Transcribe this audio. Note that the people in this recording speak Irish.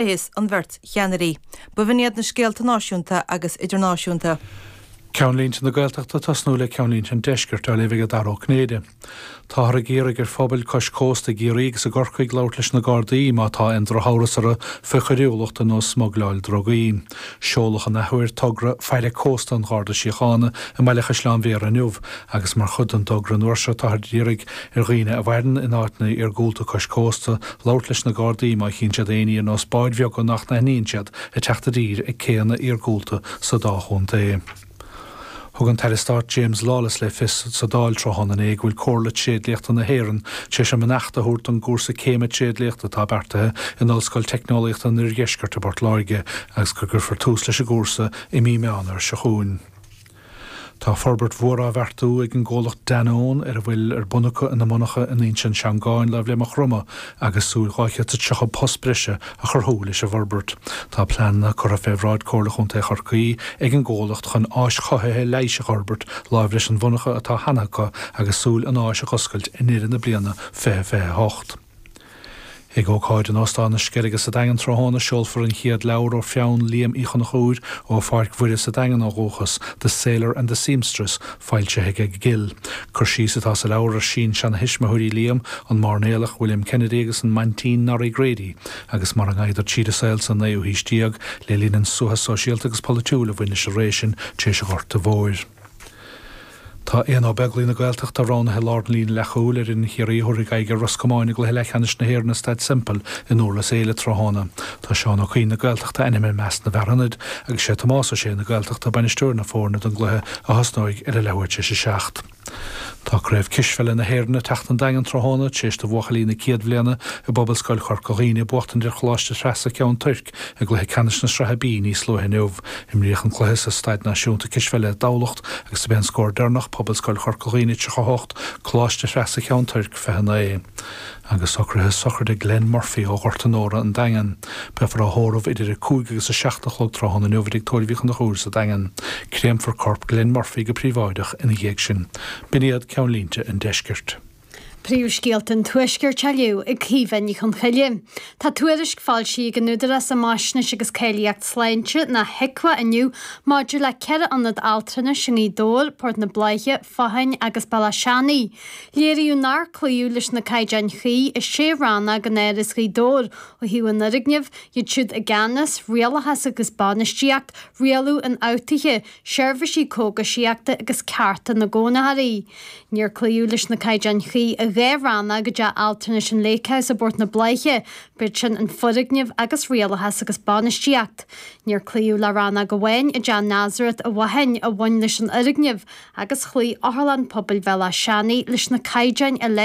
Is an bheirt cheannairí b'in iad na scéalta náisiúnta agus idirnáisiúnta. Ceannlínte na Gaeltachta tosnú le ceannlínte an Deiscirt á léamh ag Dara Ó Cinnéide. Táthar ag iarraidh ar phobail cois cósta i gCiarraí agus i gCorcaigh labhairt leis na Gardaí má tá aon drochamhras orthu faoi choiriúlacht ar nós smuigleáil drugaí. Seoladh an athuair togra faire cósta an Gharda Síochána i mBaile Chaisleáin Bhéarra inniu agus mar chuid den dtogra nua seo táthar ag iarraidh ar dhaoine a mhaireann in áiteanna iargúlta cois cósta labhairt leis na Gardaí má chíonn siad éinní ar nós báid bheaga nach n-aithníonn siad ag teacht i dtír ag céanna iargúlta sa dá chontae. Thug an tAire Stáit James Lawless le fios sa Dáil tráthnóna inné go bhfuil Comhairle Tréidliachta na hÉireann tar éis a mbeannacht a thabhairt don gcúrsa céime tréidliachta atá beartaithe in Ollscoil Teicneolaíochta an Oirdheiscirt i bPort Láirge agus go gcuirfear tús leis an gcúrsa i mí Meán Fhómhair seo chugainn. Tá forbairt mhór á bheartú ag an gcomhlacht Danone ar a bhfuil ar bun acu ina monarcha in Inse na Seangán láimh le Maigh Chromtha agus súil 230 post breise a chruthú leis an bhforbairt. Tá pleananna curtha fé bhráid Comhairle Chontae Chorcaí ag an gcomhlacht chun áis chothaithe leighis a fhorbairt láimh leis an mhonarcha atá cheana acu agus súil an áis a dh'oscailt i ndeireadh na bliana 2028. Ag ócáid in Óstán na Sceilge sa Daingean tráthnóna seolfar an chéad leabhar ó pheann Liam Uí Chonchúir ó Pháirc Mhuire sa Daingean ó dhúchas, The Sailor and the Seamstress, foilsithe ag Gill. Cur síos atá sa leabhar ar shin-seanathuismitheoirí Liam, an mairnéalach William Kennedy agus an Maintín Norrie Grady, agus mar a ngaibheadar tríd an saol sa naoú haois déag le linn an suathadh sóisialta agus polaitiúil a bhain leis an ré sin tar éis an Ghorta Mhóir. Tá Aodhna Ó Beaglaoich na Gaeltachta roghnaithe i lár na líne leathchúil ar fhoireann Chiarraí a thabharfaidh aghaidh ar Ros Comáin i gcluiche leathcheannais na hÉireann i Staid Semple i nDúrlas Éile tráthnóna. Tá Seán Ó Cuinn na Gaeltachta ainmnithe i measc na bhfear ionaid agus sé Tomás Ó Sé na Gaeltachta bainisteoir na foirne don gcluiche a thosnóidh ar a leathuair tar éis a seacht. Tá Craobh Cispheile na hÉireann ag teacht an Daingean tráthnóna tar éis do bhuachaillí na céad bhliana i bPobalscoil Chorca Dhuibhne buachtaint ar Choláiste Threasa Cheann Toirc, I gcluiche ceannais na Sraithe B níos luaithe inniu, imríodh an cluiche sa Staid Náisiúnta Cispheile i dTamhlacht agus do b'é an scór deireanach Pobalscoil Chorca Dhuibhne 38, Coláiste Threasa Cheann Toirc 29. Agus socruithe sochraide Glenn Murphy ó Ghort Onóra, An Daingean. Beifear á thórramh idir 5 agus 7 a chlog tráthnóna inniu i dTigh Tórraimh Uí Chonchúir sa Daingean. Créamfar corp Glenn Murphy go príobháideach ina dhiaidh sin. B'in iad ceannlínte an Deiscirt. Príomhscéalta an Tuaiscirt á léamh ag Caoimhe Ní Chonchoille. Tá tuairisc foilsithe ag an Údarás um Fhaisnéis agus Cáilíocht Sláinte, nó HIQA, inniu maidir le ceithre ionad altranais i nGaoth Dobhair, Port na Bláiche, Fathain agus Béal Átha Seanaigh. Léiríodh nár cloíodh leis na caighdeáin chuí i sé rannóg in Áras Ghaoth Dobhair ó thaobh an fhoirgnimh, iad siúd i gceannas, rialachas agus bainistíocht, rialú infhabhtuithe, Seirbhísí Cógaisíochta agus Cearta na gCónaitheoirí. Níor cloíodh leis na caighdeáin chuí i dhá rannóg i dTeach Altranais an Lake House i bPort na Bláiche, b'shin an Foirgneamh agus Rialachas agus Bainistíocht. Níor cloíodh le rannóg amháin i dTeach Nazareth i bhFathain a bhain leis an fhoirgneamh agus chloígh Otharlann Pobail Bhéal Átha Seanaidh leis na caighdeáin uilig.